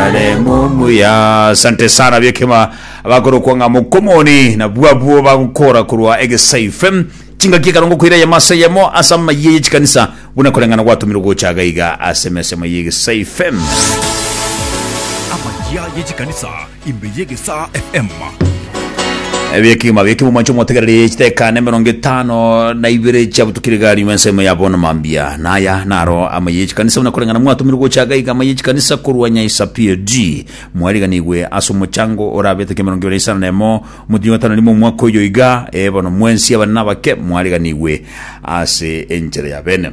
Haleluya. Asante sana biekema abakorokwa ng'a mokomoni na bwabwo bagokora korwa egesai fm chingaki ekarongo koira yemo ase yemo ase amayiye ye chikanisa buna koreng'ana gwatomirwe gocha agaiga ase emesemo ye egesai fm Amayia ye chikanisa imbe ye Gesaa FM. Ebiekima bie kimomancho mwategererie chiteka nemerongo etano na ibere chia butukire gari mwensemo ya bono mambia naya naro ama ye chikanisa buna korengana mwatumire gocha gaiga ama ye chikanisa korwa nyaisa PAG mwariganigwe ase omochango orabete kemerongo ibere isano na emo motinyi gatano rimo omwaka oyo iga e bono mwensi abane nabake mwariganigwe ase enchera ya bene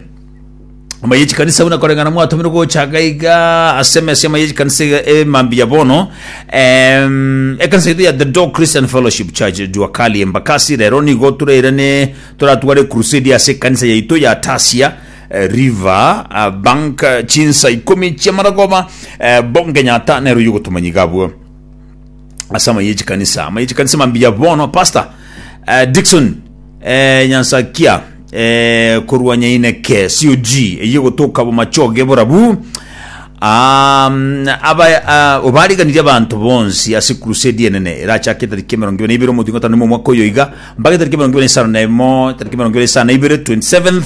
Amaya echikanisa buna koreng'ana mwatomire gochaka iga ase emesa amaya echikanisa iga emambi ya bono Em, ekanisa yaito ya the dog christian fellowship church juakali embakasi rero nigo tureirane toratware crusade ase ekanisa yaito ya tasia eh, river ah, bank eh, chinsa ikomi chiamaragoba eh, bongenyata nero yogotomanyiga abwo ase amaye chikanisa amaye chikanisa mambiya bono pastor uh, dikson uh, nyansakia uh, korwa nyaineke cog eye gotoka bomachoge borabu Um, aba uh, obariganirie abanto bonsi ase crusade enene erachake tariki emerongo ibere na ibere omotingo tano omwaka oyo iga mpaka tariki emerongo ibere na isano na emo tariki emerongo ibere na isano na ibere 27th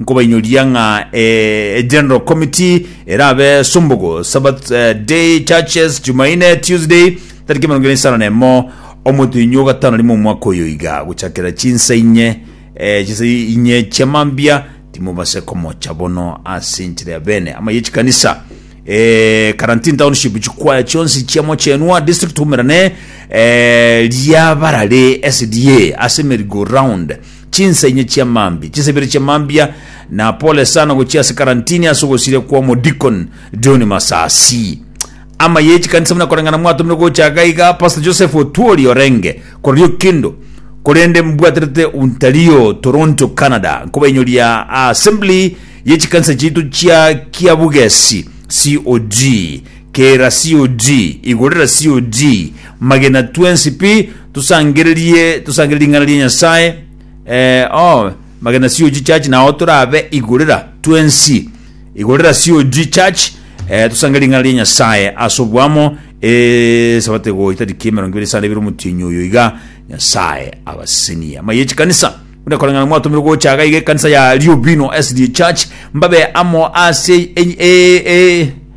Nkobainyoria ng'a e General Committee erabe Sumbugu, Sabbath eh, Day, Churches, Jumaine, Tuesday, tariki emerongo ere isano na emo, omotenyi o gatano rimo omwaka oyo iga, gochakera chinsa inye, eh, chinsa inye chiamambia, timobase komocha bono ase enchera ya bene ama ye chikanisa. Eh, Karantini Township, chikwaya chionsi chia Mochenwa District tumerane eh, riabarare SDA ase merry go round chinsenye chia mambia, chisebiri chia mambia, na pole sana gochia ase karantini ase ogosiria kwa Omodeacon John Masasi. Ama ye chikanisa buna koreng'ana mwatomire gocha iga iga Pastor Joseph Otuori Orenge kororio kendo korende mbwaterete Ontario, Toronto, Canada. Nkobainyoria Assembly ye chikanisa chiaito chia Kiabugesi, COG. Kera COG, igorera COG, magena twensi pi, tosangererie, tosangererie ring'ana ria Nyasae, eh, oh, magena COG church, nao torabe igorera twensi, igorera COG church, eh, tosangererie ring'ana ria Nyasae ase oboamo, eh, sabato egoita tariki emerongo ibere isano ebere omotienyi oyo iga, Nyasae abasesenie. Amaiga echikanisa, buna ekoreng'ana mwatomirwe gocha iga iga ekanisa ya Liobino SDA Church, mbabe amo ase enyi- eh, eh,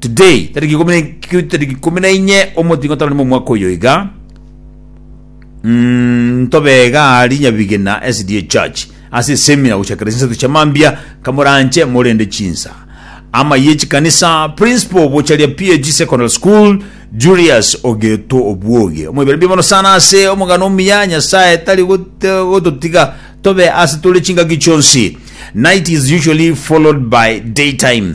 Today, tariki ikumi na- tariki ikumi na inye omotingo tore nimo omwaka oyo iga Mm, ntobe iga ari nyabigena SDA Church ase semina gochakera chinsato chia mambia kamoranche morende chinsa ama ye chikanisa principal bocharia PAG Secondary School Julius Ogeto Obwoge omoibere bia mono sana ase omogano omuya Nyasaye tari gote- gototiga tobe ase tore chingaki chionsi night is usually followed by daytime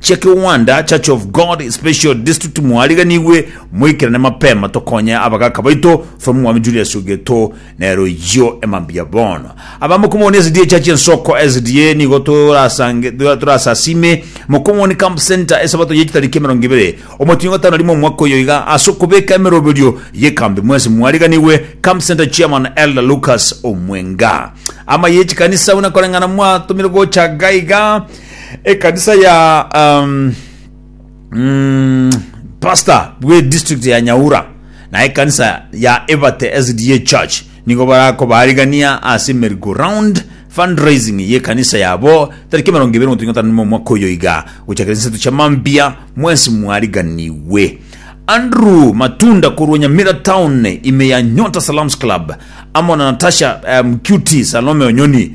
Chia kiwanda Church of God Special District mwariganigwe moikerane mapema tokonye abagaka baito from Mwami Julius Ogeto nero eyio emambia bono aba mokomoni SDA Church Ensoko SDA nigo torasange torasasime mokomoni Camp Center esabato ye chitariki emerongo ibere omotinyo gatano rimo omwaka oyo iga ase okobeka emeroberio yekambi mwensi mwariganigwe Camp Center Chairman Elder Lucas Omwenga ama yechikanisa buna koreng'ana mwatomire gocha gaiga ekanisa ya um, mm, pastor bwe district ya nyaura na ekanisa ya ebate sda church nigo barako barigania ase mergo round fundraising ye kanisa yabo tariki mirongo ibere gotunya tano na omwaka oyo iga gochakera chinsato chia mambia mwensi mwariganiwe andrew matunda korwa nyamira town ime ya nyota salams club amo na natasha um, qt salome onyoni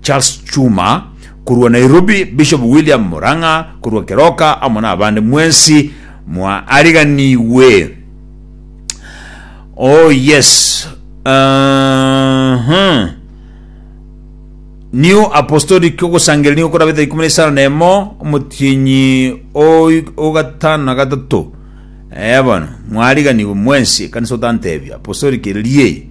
Charles Chuma korwa Nairobi, Bishop William Murang'a korwa Keroka amo nabande mwensi mwaariganigwe. Oh yes. Uh-huh. New Apostolic ogosangeria nigo korabete ikume na isano na emo omotienyi ogatano na gatato. Eh bono mwariganigwe mwensi kanisa otantebia apostolic riei.